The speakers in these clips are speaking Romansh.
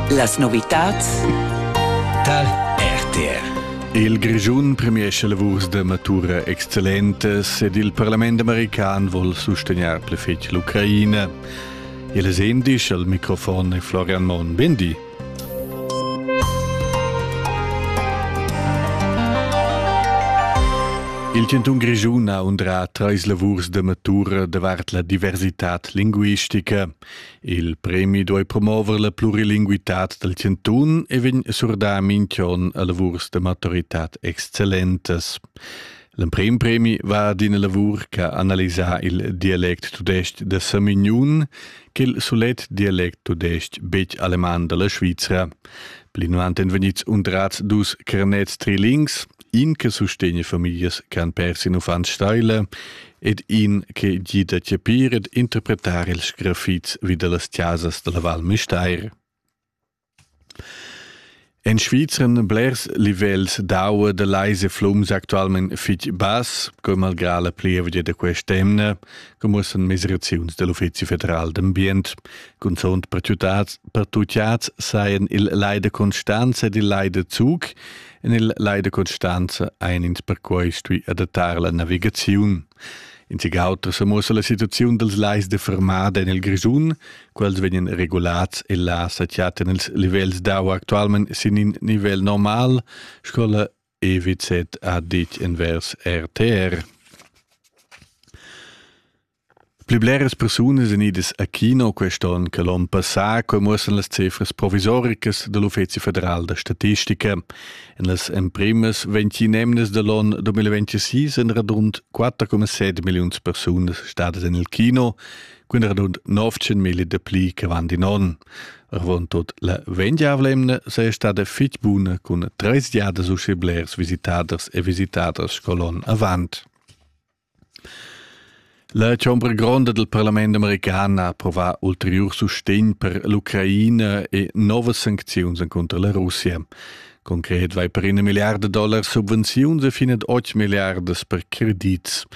Las novitads tal RTR. Il Grischun premiescha lavurs da matura excellentas ed il parlament american vuol sustegnar pli fetg l'Ucraina. Il sendisch al microfon è Florian Mon. Bendi. Il Cantun Grischun ha undrà trais lavurs da matura davart la diversitad linguistica. Il premi duei promover la plurilinguitad dal chantun e vegn surdà minch'on a lavurs da maturitad excellentas. L'emprim premi va d'ina lavur che ha analisà il dialect tudestg da Samignun che il sulet dialect tudestg betg aleman dalla Svizra. Plinavant èn vegnids undrats dus carnets trilings in che sustegna famiglias che han pers in uffant steila ed in che gida chapir ed interpretar ils grafits vi da las chasas dalla Val Müstair. En Svizra blers livels d'aua da leise flums actualment fitg bass, come malgrà la plievegia da quest'emna, come san mesiraziuns del Uffizi federal d'ambient, cunzont per tutats sajan il Leide Constanza ed il Leide Zug En il Leida Constanza ein ins perquei stui adattar la navigaziun. In sig auter sa muossa la situaziun dals lais de fermada en il Grischun, quels vegnan regulats e là satiaten els livels d'aua actualment sin in nivel normal, scola EWZ ha ditg envers RTR. Pli bleras persunas èn idas a kino quest onn che l'onn passà, quai muossan las cifras provisoricas da l'Uffezi federal da statistica. En las emprimas ventg emnas da l'onn 2026 èn radund 4,7 milliuns persunas stadas en il kino, quindi radund 19 mila dapli che avant in onn. Avon tot la vendiavla emna sei stada fitg buna cun 30 giadas uschè blers visitaders e visitaders sco l'onn avant. La chombra gronda dal parlament american ha approvà ulteriur sustegn per l'Ucraina e novas sancziuns encunter la Russia. Concret vai per ina milliarda dollar subvenziuns e fin ad 8 milliardas per credits.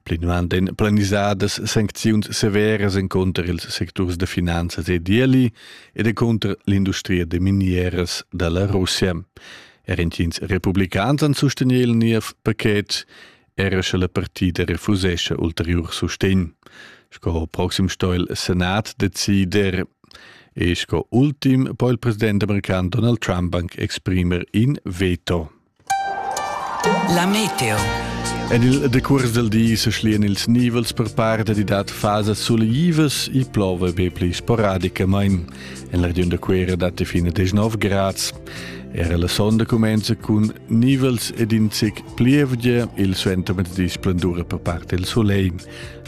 Plinavant èn planisadas sancziuns severas encunter ils secturs da finanzas e d'ieli ed encunter l'industria da minieras da la Russia. Er intgins republicans han sustegni il niev paquet era sche la partida refusescha ulteriur sustegn, sco ho proxim sto il Senat decider e sco ultim po il president american Donald Trump anc exprimer in veto. La meteo. En il decurs del di se schlien ils nivels per par dad dat fasa suleivas e plova be pli sporadicamain. En la regiun da Cuera datti fin a 19 grads. Era la sonda cumenza cun nivels ed in zic plievgia, il suentermezdi splendura per parte il solegl.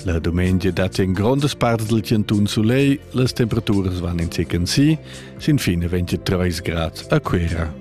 La domenica datti en grondas parts del cantun solegl, las temperaturas vanno in zic en sì, sin fine 23 grad a Cuera.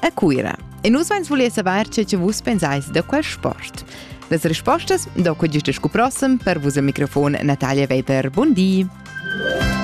a Cuira. E nus vens voler saver ce che vus pensais da quel sport. Las rispostas dopo giusto scu prossem per vus al microfon Natalia Weber. Buondì!